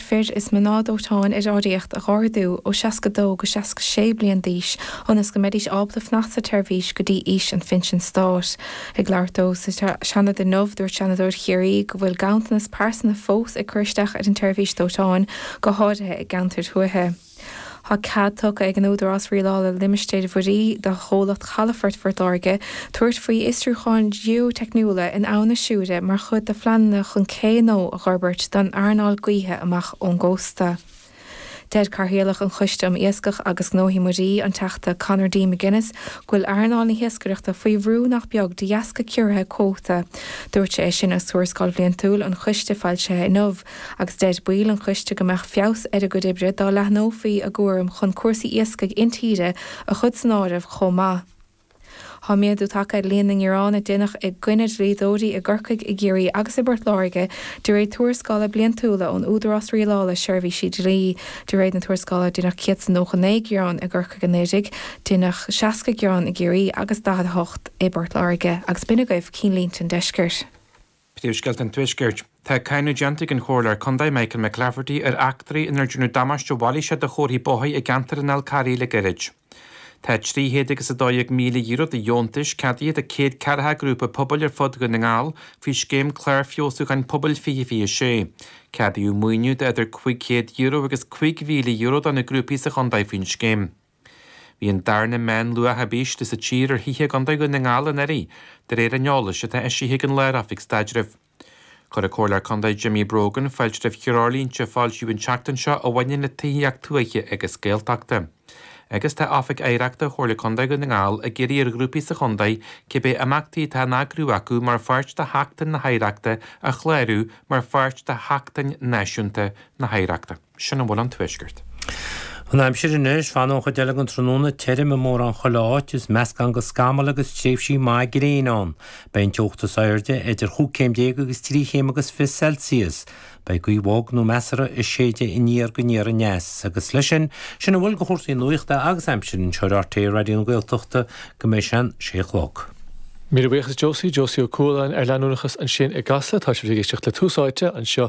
fir is mná dóiteáin ar áirithíocht a dh'ardú ó 62 go 66 bliain d'aois ionas go mbeidís ábalta fanacht sa tseirbhís go dtí aois an phinsin stáit. Ag labhairt dó sa Seanad inniu, dúirt Seanadóir Chiarraí go bhfuil ganntanas pearsana fós ag cur isteach ar an tseirbhís dóiteáin, go háirithe i gceantair thuaithe. Tá cead tugtha ag an Údarás Rialála Limistéir Mhuirí do Chomhlacht Chalafort Phort Láirge tabhairt faoi fhiosrúcháin gheoiteicniúla in Abhainn na Siúire mar chuid de phleananna chun cé nua a dh'fhorbairt don earnáil gaoithe amach ón gcósta. Deir Cathaoirleach an Choiste um Iascach agus Gnóthaí Muirí, an Teachta Conor D. McGuinness, go bhfuil earnáil na hiascaireachta faoi bhrú nach beag de dheasca ciorruithe cuóta. Dúirt sé é sin agus Tuarascáil Bhliantúil an Choiste foilsithe inniu. agus deir baill an choiste go mbeadh feabhas ar a gcuid oibre dá leathnófaí a gcúram chun cúrsaí iascaigh intíre a chur san áireamh chomh maith. Tá méadú tagtha ar líon na ngearán a déanadh i gcoinne dlíodóirí i gCorcaigh, i gCiarraí agus i bPort Láirge de réir tuarascála bliantúla ón Údarás Rialála Seirbhísí Dlí. De réir na tuarascála, déanadh 199 gearán i gCorcaigh anuraidh, déanadh 60 gearán i gCiarraí agus 48 i bPort Láirge agus b'in agaibh cinn línte an deiscirt. Príomhscéalta an Tuaiscirt. Tá cáineadh déanta ag an Chomhairleoir Contae Michael McClafferty ar eachtraí ina ndearnadh damáiste mhailíseach do chomharthaí bóthair i gceantar an Fhalcarraigh le gairid. Tá trí chéad agus a dó déag míle euro de dheontais ceadaithe do céad ceathracha grúpa pobail ar fud Dhún na nGall faoi scéim Clár Feabhsúcháin Pobail 2026. Ceadaíodh maoiniú de idir cúig chéad euro agus cúig mhíle euro do na grúpaí sa chontae faoin scéim. Bhí an darna meánluach ab ísle sa tír ar thithe i gContae Dhún na nGall anuraidh, de réir an eolais atá eisithe ag an Lár-Oifig Staidrimh. Chuir an Comhairleoir Contae Jimmy Brogan fáilte roimh threoirlínte a foilsíodh an tseachtain seo a bhaineann le tithíocht tuaithe agus Gaeltachta, agus tá Oifig Oidhreachta Chomhairle Contae Dhún na nGall ag iarraidh ar ghrúpaí sa chontae cibé imeachtaí atá á n-eagrú acu mar pháirt de Sheachtain na hOidhreachta a chlárú mar pháirt de Sheachtain Náisiúnta na hOidhreachta. Sin a bhfuil ón Tuaisceart. An aimsir anois, fanfaidh an chuid eile den tráthnóna, tirim i mórán chuile áit, is meascán de scamaill agus tréimhsí maithe gréine ann. Beidh an teocht is airde idir chúig chéim déag agus trí chéim agus fiche Celsius. Beidh gaoth bhog nó measartha ag séideadh aniar go aniar aneas. Agus leis sin, sin a bhfuil de chúrsaí nuachta agus aimsire anseo ar RTÉ Raidió na Gaeltachta go mbeidh sé an sé a chlog. Míle buíochas Josie Josie Ó Cualáin ar leanúnachas ansin i gCasla, tá sibh ag éisteacht le Tús Áite anseo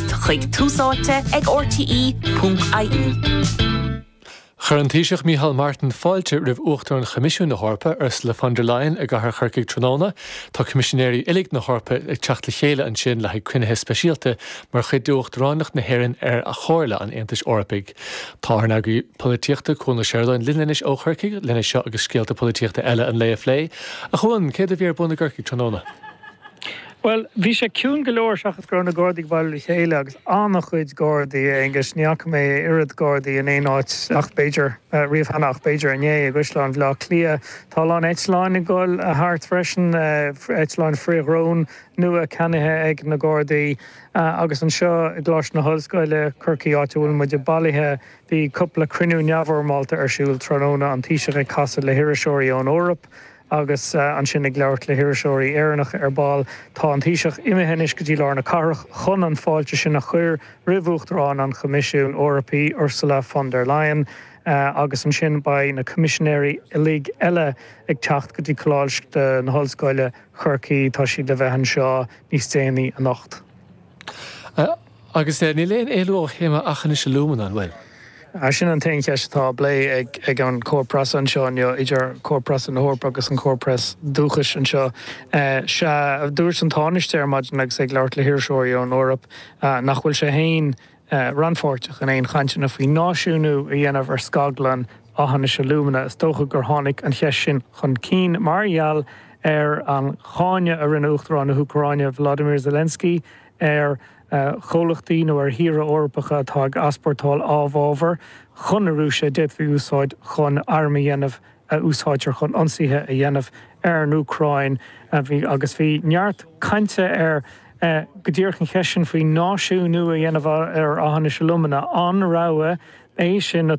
chuig Tús Áite ag RTÉ.ie. Chuir an Taoiseach Micheál Martin fáilte roimh Uachtarán Choimisiúin na hEorpa, Ursula von der Leyen i gcathair Chorcaí tráthnóna. Tá Coimisinéirí uilig na hEorpa ag teacht le chéile ansin le haghaidh cruinnithe speisialta mar chuid d'Uachtaránacht na hÉireann ar Chomhairle an Aontais Eorpaigh. Tá ár n-eagraí polaitíochta, Cuan Ó Seireadáin linn anois ó Chorcaigh lena seo agus scéalta polaitíochta eile an lae a phlé. A Chuan, céard a bhí ar bun i gCorcaigh tráthnóna? Bhuel, bhí sé ciúin go leor seachas go raibh na Gardaí ag bailiú le chéile, agus an-chuid Gardaí, a Aonghuis, ní fhaca mé oiread Gardaí in aon áit ach b'fhéidir, riamh cheana ach b'fhéidir inné, i gCaisleán Bhleá Cliath. Tá a lán eitleáin ag dul thart freisin, eitleáin frith-dhrón nua ceannaithe ag na Gardaí, agus anseo i gColáiste na hOllscoile, Corcaigh, áit a bhfuil muide bailithe, bhí cupla cruinniú neamhfhoirmeálta ar siúl tráthnóna, an Taoiseach ag casadh le hiriseoirí ón Eoraip, Agus ansin ag labhairt le hiriseoirí Éireannacha ar ball, tá an Taoiseach imithe anois go dtí lár na cathrach chun an fáilte sin a chur roimh Uachtarán an Choimisiúin Eorpaigh, Ursula von der Leyen, agus ansin beidh na coimisinéirí uilig eile ag teacht go dtí Coláiste na hOllscoile, Chorcaí, tá siad le bheith anseo níos déanaí anocht. Agus eh, níl aon éalú ó théama Aughinish Alumina, an bhfuil? Ah, sin an t-aon cheist atá á bplé ag an cór preasa anseo inniu, idir cór preasa na hEorpa agus an cór preas dúchais anseo. Eh, sea, a dúirt an Tánaiste ar maidin agus ag labhairt le hiriseoirí ón Eoraip, ah, nach bhfuil sé fhéin, eh, rannpháirteach in aon chainteanna faoi náisiúnú a dhéanamh ar scaglann Aughinish Alumina. Is dócha gur tháinig an cheist sin chun cinn mar gheall ar an cháineadh a rinne Uachtarán na hÚcráine, Volodymyr Zelensky, ar chomhlachtaí nó ar thíortha Eorpacha atá ag easpórtáil amhábhar chun na Rúise a d'fhéadfaí a úsáid chun airm a dhéanamh a úsáidtear chun ionsaithe a dhéanamh ar an Úcráin agus bhí neart cainte ar go díreach an cheist sin faoi náisiúnú a dhéanamh ar Aughinish Alumina. An rogha é sin?